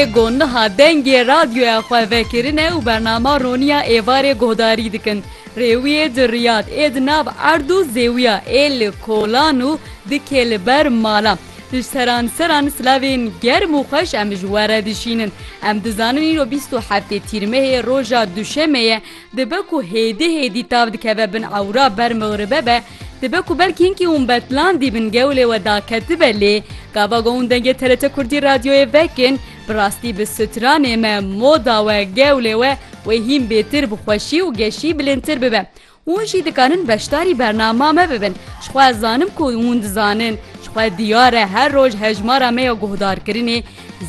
Êgo niha dengê radyoya xwe vekirine û bernama Roniya êvarê guhdarî dikin. Rêwiyê di Riyad ê di nav erd û zêwiya ê li kolan û dikê li ber mala. Di seran seran silavên germ û xweş em ji we re dişînin. Em dizanin îro bîst û heftê Tîrmehê roja duşemê ye. Dibe ku hêdî hêdî tav dikeve bin ewra ber mixribe be, dibe ku belkî hinkî hûn betlan dîbin gewlê we daketibe lê gava ku hûn dengê TRT Kurdî radyoyê vekin bi rastî bi stranê me, moda we, gewlê we wê hîn bêtir bi xweşî û geşî bilindtir bibe. Hûn jî dikarin beşdarî bernama me bibin. Ji xwe ez zanim ku hûn dizanin, ji xwe diyar e her roj hejmara me ya guhdarkirinê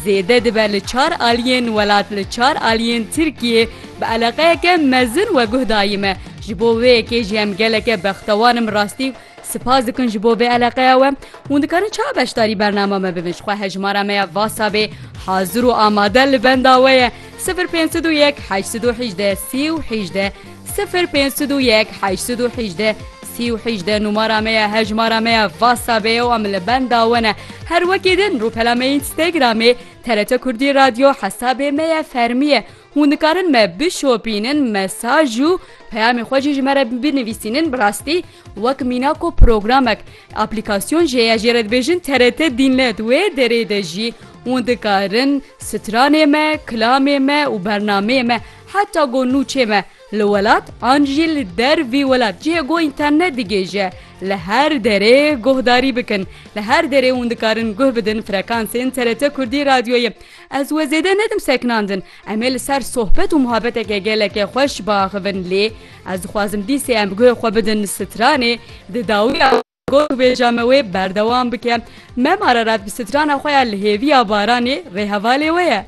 Zêde dibe li çar aliyên welat li çar aliyên Tirkiyê bi eleqeyeke mezin weguh dayî me. Ji bo wê yekê jî em geleke bextewar im rastî spas dikin ji bo vê eleqeya we. Hûn dikarin çawa beşdarî bernama me bibin ji xwe hejmara me ya WhatsAppê hazir û amade li benda we ye sifir pênc sed û yek heşt sed û hejdeh sî û hejdeh. Sifir pênc sed û yek heşt sed û hîjdeh sî û hîjdeh numara me ye hejmara me ye Whatsappê ye û em li benda we ne her wekî din rûpela me Instagramê TRT Kurdî Radio hesabê me ye fermî ye hûn dikarin me bişopînin mesaj û peyamê xwe jî ji me re binivîsînin bi rastî wek mîna ku programek aplîkasyon jê ye jê re dibêjin TRT Dînlet wê derê de jî hûn dikarin stranê me kilamê me û bernameyê me Heta ku nûçê me li welat an jî li der vî welat cihê ku înternet digihêje, li her derê guhdarî bikin. Li her derê hûn dikarin guh bidin frekansên TRT Kurdî radyoyê. Ez wê zêde nedim sekinandin. Em ê li ser sohbet û muhabeteke gelekê xweş biaxivin lê ez dixwazim dîsê em guhê xwe bidin stranê di dawiya gorbêja me wê berdewam bike. Mem Ararat bi strana xwe ya Li hêviya baranê rêhevalê we ye.